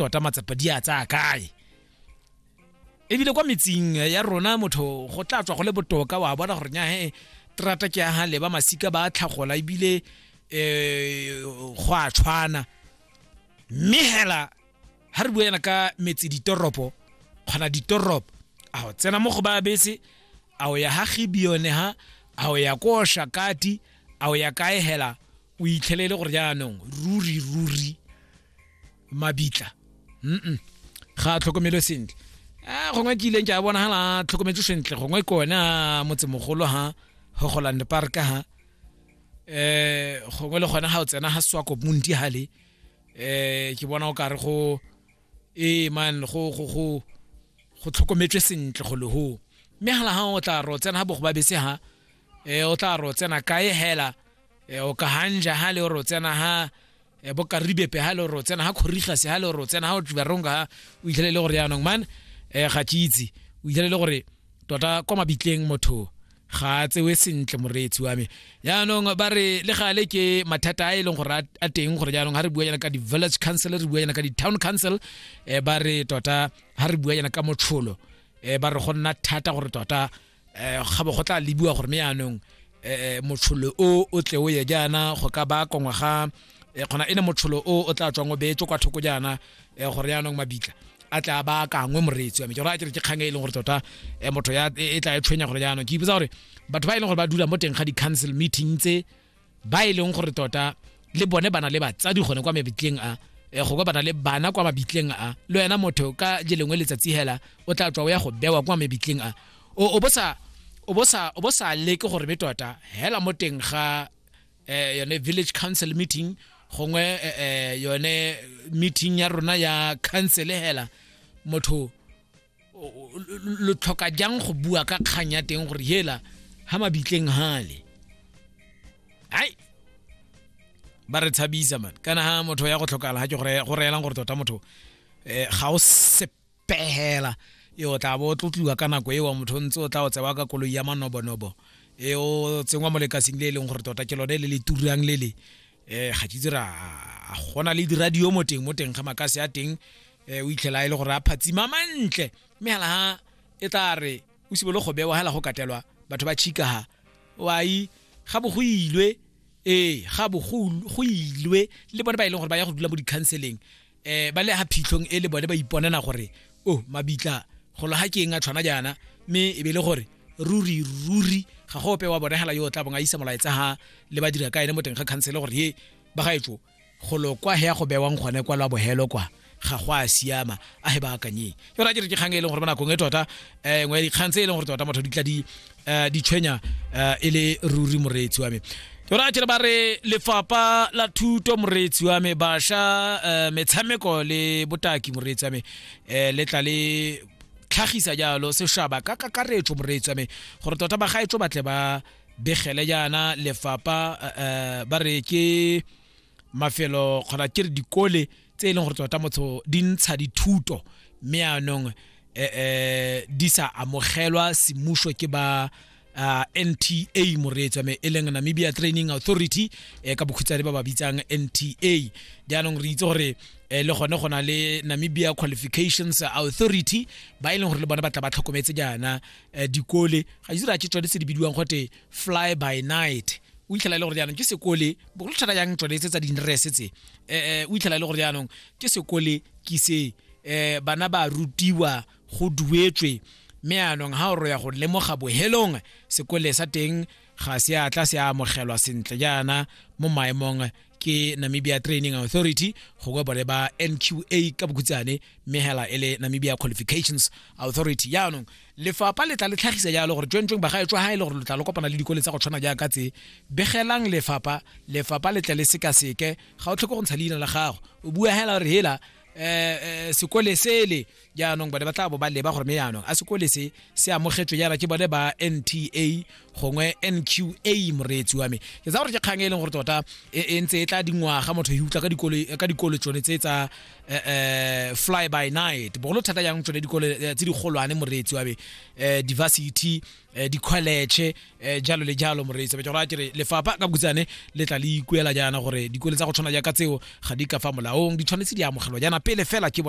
tota matsapa di a tsaya kae ebile kwa metsing ya rona motho go tla tswa go le botoka wa bona gore nya he terata ke ya gale ba masika ba tlhagola ebile um go a tshwana mme hela ga re buela ka metse ditoropo kgona ditoropo a o tsena mo go ba bese a o ya ga gibione ha a o ya ko shakati a o ya kae hela o itlhelele gore jaanong ruri ruri mabitla mm ga a tlhokomelwe sentle a gongwe ke ileng ke a bona gala tlhokometse sentle gongwe ke one a motsemogolo ha gogoland park ha eh gongwe le gone ga o tsena ga swako monti hale eh ke bona o kare go e man go go go go tlhokometswe sentle go le ho mme gala ga o tla ro tsena ga bogo ba bese ha eh o tla ro tsena kae hela e o ka hanja ha le ro tsena ha e bo ka ribepe ha le ro tsena ha khoriga se ha le ro tsena ha o tla ronga ha o itlhele le gore yanong man e ga tshitsi o itlhele le gore tota kwa mabitleng motho ga a tsewe sentle moreetsi wa me yaanong ba re le gale ke mathata a e leng gore a teng gore jaanong ga re bua yana ka di-village council re bua yana ka di-town council um ba re tota ga re bua yana ka motsholo um ba re go nna thata gore tota eh, gabo go tla lebiwa gore me yaanong eh, motsholo o o tle o ye jaana go ka ba kongwa ga eh, kgona e ne motsholo o o tla tswang o beetswe kwa thoko jaana eh, gore yaanong mabitla a tla ba akangwe moreetsi wa me ke gore a kere ke kgang e e leng gore tota eh, motho ya e e tla e tshwenya gore jaanong ke ipotsa gore batho ba e leng gore ba dula mo teng ga di-council meeting tse ba e leng gore tota le bone bana le batsadi gone kwa mebitleng a eh, go kopana le bana kwa mabitleng a le wena motho ka je lengwe letsatsi hela o tla tswa o ya go bewa kwa mebitleng a o bo sa o bo sa o bo sa leke gore be tota hela mo teng ga eh yone village council meeting gongwe eh, eh yone meeting ya rona ya council hela motho lo tlhoka jang go bua ka kgang ya teng gore hela ha mabitleng hale hai ba re tshabisa man kana ha motho ya go tlhokala ha ke go reelang gore tota motho eh, ga o sepegela e o tla bo o tlotliwa ka nako ewa motho ntse o tla o tsewa ka koloi ya manobonobo e o tsengwa mo lekasing le e leng gore tota ke lone le le turang le le eh ga tse ra a gona le diradio mo teng mo teng ga makase a teng eh o itlhela e le gore a phatsima mantle mme hala ha e tla re o sibolo go bewa hala go katelwa batho ba chika ha wai ga bo go ilwe eh ga bo go ilwe le bone ba ile e gore ba ya go dula mo di counseling eh ba le ha phitlhong e le bone ba iponela gore o oh, mabitla golo ha ke eng a tshwana jaana mme e be le gore ruri ruri ga go ope wa bonegela yo o tla bong a isa molaetsa ha le ba dira ka ene mo teng ga khansele gore ye ba gaetso golo kwa he ya go bewang gone kwa lwa bohelo kwa ga go a siama a he ba akanyeng yona ke re ke kgang e leng gore mo nakong e tota um ngwe dikgang tse e leng gore tota motho di tla di um ditshwenya um e le ruri moreetsi wa me yona ke re ba re lefapha la thuto moreetsi wa me basha um metshameko le botaki moreetsi wa me um le tla le tlhagisa jalo sešaba ka kakaretso moreetsi wa me gore tota ba gaetso batle ba begele jaana lefapha um ba re ke mafelo kgona ke re dikole tse e leng gore tota motsho di ntsha dithuto mme yaanong um eh, eh, di sa amogelwa semuso ke ba uh, nta moreetswa me e leng namibia training authority eh, ka bokhutshwane ba ba bitsang nta jaanong re itse gore eh, le gone go na le namibia qualifications authority ba e leng gore le bone ba tla ba tlhokometse jaana eh, dikole ga itse re a ke tsone tse di bidiwang gote fly by night o itlhela e le gore jaanong ke sekole bogolo thata yang tsone tse tsa dinrese tse um o itlhela e le gore jaanong ke sekole ke se um bana ba rutiwa go duetswe mme anong ha o roya go lemoga bohelong sekole sa teng ga se a tla se amogelwa sentle jaana mo maemong ke namibia training authority go kwa bone ba nqa ka bokhutsane mme hela e le namibia qualifications authority yaanong lefapha le tla le tlhagisa jalo gore tswentsweng bagaetswa ga e le gore lo tla le kopana le dikole tsa go tshwana jaaka tse begelang lefapha lefapha le tle le sekaseke ga o tlhoke go ntsha leina la gago o bua hela gore hela um sekole sele jaanong bone ba tla bo ba leba gore me jaanong a sekole se se amogetswe jaana ke bone ba nta gongwe nqa moreetsi wa me ke tsa gore ke kgang e leng gore tota e, e ntse e tla dingwaga motho e utlwa ka dikolo tsone tse tsa eh, eh, fly by night bogolo thata jang tsone dikolo eh, tse digolwane moreetsi wa me diversity dikholetšhe jalo le jalo moreetsi wa me ke gore lefapha ka bokutsane le tla le ikuela jaana gore dikolo tsa go tshwana jaaka tseo ga di ka fa molaong di tshwanetse di amogelwa jaana pele fela ke bone